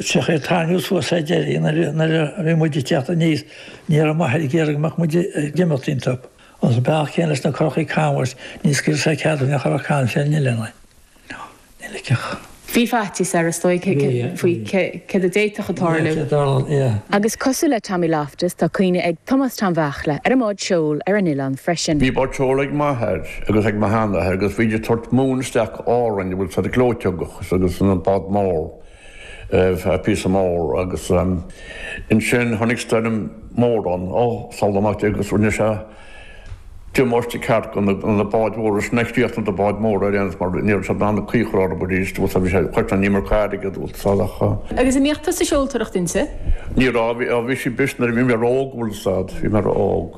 Féach ar tháinig siad suas sa deireadh nuair a bhí muid ag teacht aníos ní raibh m'athair ag iarraidh go mbeadh muid ag imeacht iontu. 'S an bealach céanna leis na curachaí canbháis, ní scaoilfeadh sé cead dúinn a ghoil ar caint ar an ileán. Nó níl ag cách. Bhí faitíos air is dóigh faoi cad a d'fhéadfadh a tarlú. Agus cosúil le Tommy Loftus, tá cuimhne ag Tomás Tom Bheachla ar an mbád seoil ar an ileán freisin. Bhí bád seoil ag m'athair agus ag mo sheanathair agus bhí siad ag tabhairt móin isteach go Árainn, an bhfuil a fhios ad, gleoiteog agus an bád mór. púcán mór agus ansin tháinig stoirm mór ann ó shin amach agus rinne sé damáiste ceart do na báid mhóra is chríochnaigh na báid móra ar aon nós mar níor fhios dom an caochar orm arís agus tá sé choiteann an imirce airgid agus tá a. Agus imeachta sa seoltóireacht inti? Ní raibh, bhí sí bris nuair a bhí mé óg, an bhfuil a fhios ad, bhí mé óg.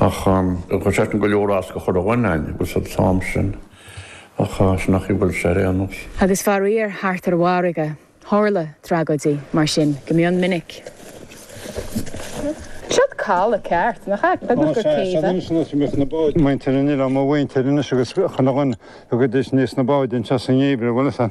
Ach tá sé sin go leor as go Carna dhúinn, an bhfuil a fhios ad, an t-am sin ach sin nach í bhfuil sé ar aon nós. Agus faraor thart ar an bhfarraige tharla tragóidí mar sin go mion minic. Céard caladh ceart, nach ea? B'fhéidir gur céibh é? Anois anois anois na báid. Muintir an oileáin, mo mhuintir anois agus chuile dhuine, thugaidís aníos na báid anseo sa ngeimhreadh, bhuel is a.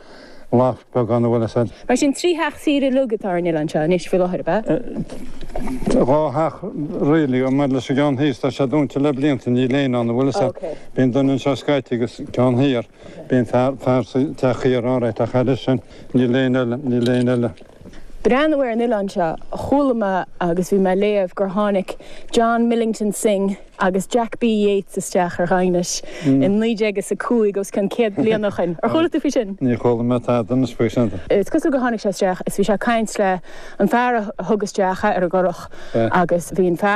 Lathach bheag ann an bhfuil a fhios ad. Mar sin, trí theach saoire uilig atá ar an oileán seo anois faoi láthair, ab ea? Tá dhá theach really, agus maidir leis an gceann thíos, tá sé dúnta le blianta, níl éinne ann, an bhfuil a fhios ad. OK. Bíonn duine anseo scaití agus an ceann thiar, bíonn fear, fear sa teach thiar, alright, ach thairis sin, níl éinne eile, níl éinne eile. breathnú ar an oileán seo, chuala mé agus bhí mé ag léamh gur tháinig John Millington Synge agus Jack B Yeats isteach ar Dhaighinis in naoi déag is a cúig, os cionn céad bliain ó shin. Ar chuala tú faoi sin? Níor chuala mé tada anois faoi sin. Is cosúil gur tháinig sé isteach is bhí sé ag caint le an fear a thug isteach é ar an gcurach agus bhí an fear.